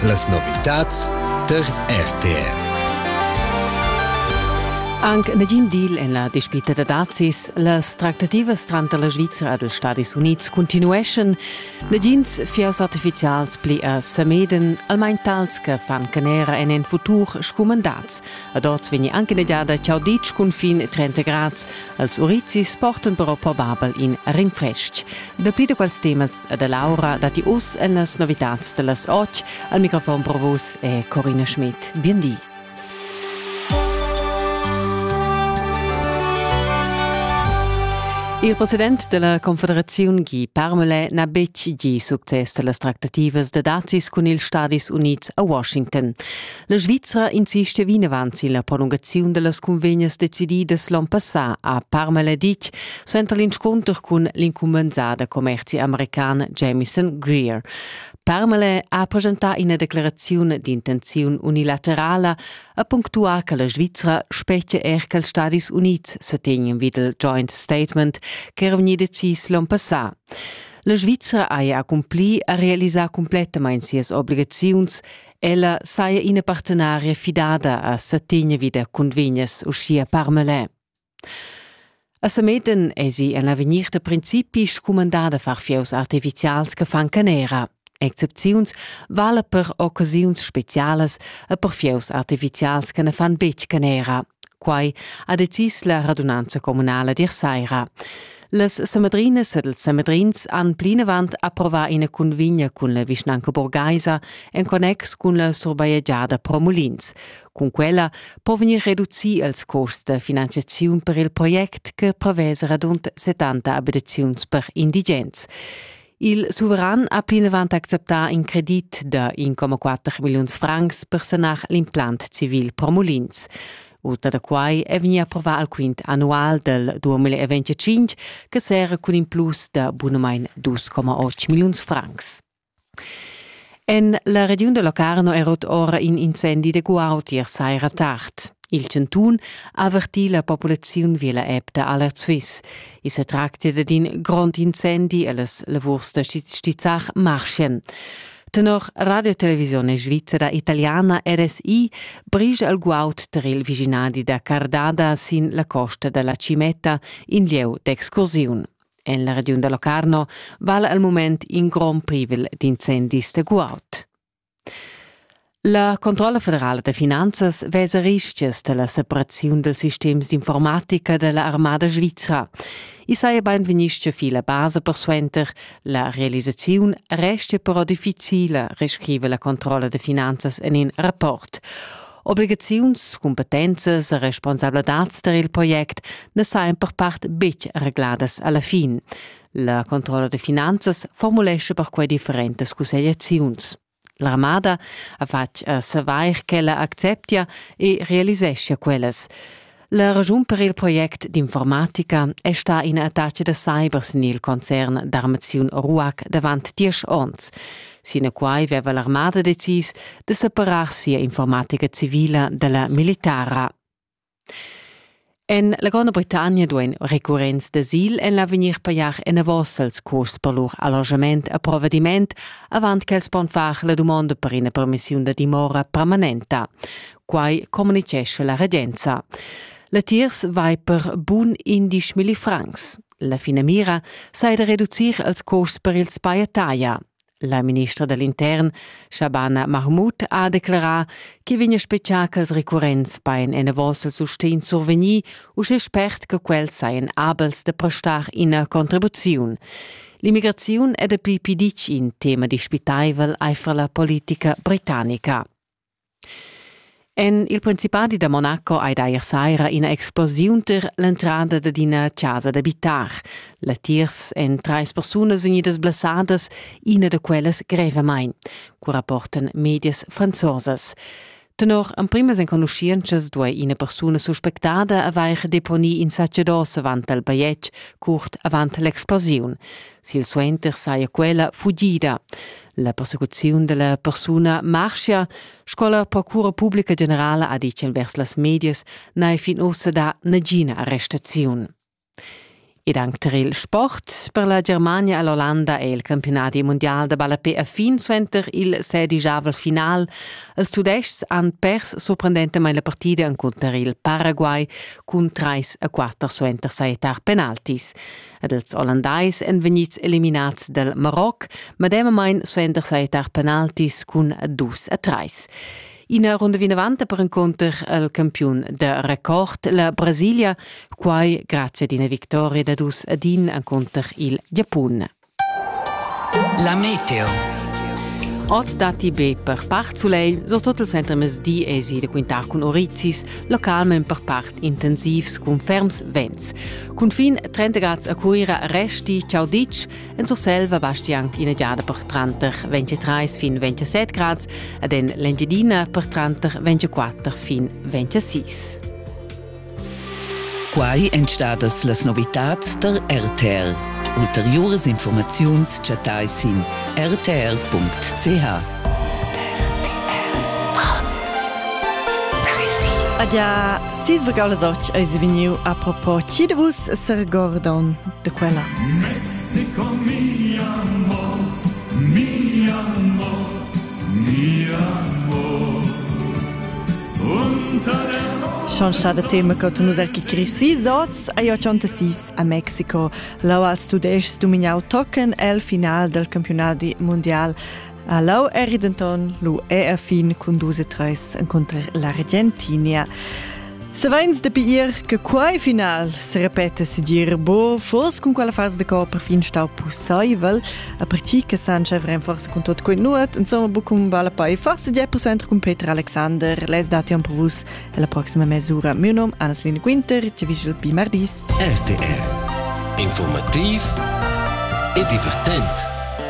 Las novitads tar RTR. Anc negin deal en la dispita da dazis. Las tractativas tranter la Svizra ed ils Stadis Unids continueschan. Negins fiers artifizials pli a Sameden, almain tals che fan canera en en futur scumandats. Ad oz vegni anche negiada ciao ditg cunfin 30 grads. Als urizis portan però probabel in rinfrestg. Dapli da quels temas ed Laura datti uss en las novitads da las otg. Al microfon per vus è Corina Schmidt. Bien di. Il president della Confederazione Guy Parmelin n'ha betg gì success da las tractativas da dazis cun ils Stadis Unids a Washington. La Svizra insiste vinavant silla prolungaziun dellas cunvegnas decididas l'on passà a Parmaleditg suenter l'inscunter cun l'incumbensà da commerzi american Jamison Greer. Parmale ha presentà ina declaraziun d'intenziun unilaterala a punctuar che la Svizra specie er che els Stadis Units se tegnen vid il joint statement ch'era vegni decis l'on passà. La Svizra haja accumpli a realisar complettamain sias obligaziuns Ella saja ina partenaria fidada a satigna vi da cunvegnas uschia Parmelin. A Sameden esi en l'avegnir da principi scumandada far fieus artificials che fan canera. Excepziuns vala per occasiuns specialas e per fieus artificials che ne fan betg canera. Quai ha decis la radunanza comunala dir saira. Las Samedrinas ed ils Samedrins han plinavant approvà ina cunvegna cun la vischnanca burgaisa en connex cun la surbajegiada pro mulins. Cun quella po vegnir reducì ils custs da finanziaziun per il project che prevesa radund 70 abitaziuns per indigens. Il suveran ha plinavant acceptà in credit da 1,4 milliuns francs per sanar l'implant civil pro mulins. Uta da quai è vegnì approvà al quint annual del 2025 che serra cun in plus da bunamain 2,8 milliuns francs. En la regiun da Locarno è rot ora in incendi da guautier saira tard. Il Centun ha avertì la populaziun via la app da Alert Swiss. I sa tractia dad in grond incendi e las lavurs da stizzar marschien. Tenor Radiotelevisione Svizzera Italiana RSI brige al guaud tar il viginadi da Cardada sin la costa da la Cimetta in lieu d'excursiun. En la regiun da Locarno vala al mument in grond privel d'incendis da guaud. La controlla federala da finanzas vesa rischias dalla separaziun dels sistems d'informatica della armada svizra. I saja beinvegnisce fi la basa persuenter, la realisaziun restia però difficila, rescrive la controlla de finanzas en in rapport. Obligaziuns, competenzas e responsabladats der il project ne sajan per part betg regladas alla fin. La controlla de finanzas formulesce per quei differentes cussegliaziuns. L'armada ha fatg a savair ch'ella acceptia e realiseschia quellas. La raschun per il project d'informatica è stà in attacc da cyber sin il concern d'armaziun RUAC davant diesch onns. Sinaquai aveva l'armada decis da separar sia informatica civila da la militara. En la Gronda Britannia duain recurrents d'asil en l'avegnir pajar enavos els custs per lur allojament e provediment avant ch'els pon far la dumonda per ina permissiun da dimora permanenta. Quai communitgescha la regenza. Latiers vai per bun indisch milli francs. La finamira sei da reducir els custs per ils paiataia. La ministra da l'intern, Shabana Mahmoud, ha declerà ch'i vegnia spetgà ch'als recurrents bain enavos il sustegn survegnì uschè spert che quels sajan abels da prestar ina contribuziun. L'immigraziun è dapi pli ditg in tema dispitaivel aifer la politica britannica. En il principadi da Monaco ei d'eir saira ina explosiun tar l'entrada dad ina chasa d'abitar. Latiers èn trais persunas vegnidas blessadas, ina da quellas grevamain, cu rapportan medias franzosas. Tenor emprimas enconuschientschas duai ina persuna suspectada avair deponì insatge d'os avant il bajetg curt avant l'explosiun. Silsuenter saja quella fugida. La persecuziun della persuna marschia, sco la procura pubblica generala ha ditg envers las medias, n'è fin ussa da nagina arrestaziun. Ed anche per il sport, per la Germania e l'Olanda è il campionati mondial da ballapé a fin suenter il sedigiavel final. Els tudestgs han pers sorprendentamain la partida encunter il Paraguay cun trais a quatter suenter sajettar penaltis. ed ils Ollandais èn vegnids eliminads dal Maroc, medemamain suenter sajettar penaltis cun dus a trais. Ina runda vinavant per encunter al campiun da record, la Brasilia, quai grazie ad ina victoria da dus ad in encunter il Giapun. La meteo. Oz datti be per part sulegl, so tot il center mesdi esi da quintar cun Orizis, localment per part intensivs cun ferms vents. Cunfin 30 grad a Cuira resti ciao ditg, en Surselva basti anche ina giada per tranter 23 fin 27 grad ed en l'Engiadina per tranter 24 fin 26. Quai èn stadas las novitads der RTR. Ulteriores Informaziuns chattai sin rtr.ch. Adia Sisvergau les och eis vegniu a propo chi de vus s'regordon de quella. Mexico mi amor, mi amor, mi amor. Schon schade tema che tu er chi crisi zots a jo sis a Mexico. Lau als tudeschs dumignau tocken el final del campionat mundial A Lau eri denton lu è a fin cun dus e treis encunter la Argentinia. Saveins dapi ir che quei final se repeta sigir bo, fos cun quella fase de cor perfin stau pusseivel, a parti che Sanchez renforza con tot quei nuot, insomma bu cum vale poi forse 10% cun Peter Alexander, les dati per vus e la prossima mesura. Mio nome Anna-Selina Quinter, ci vigil pi mardis. RTR. Informativ e divertent.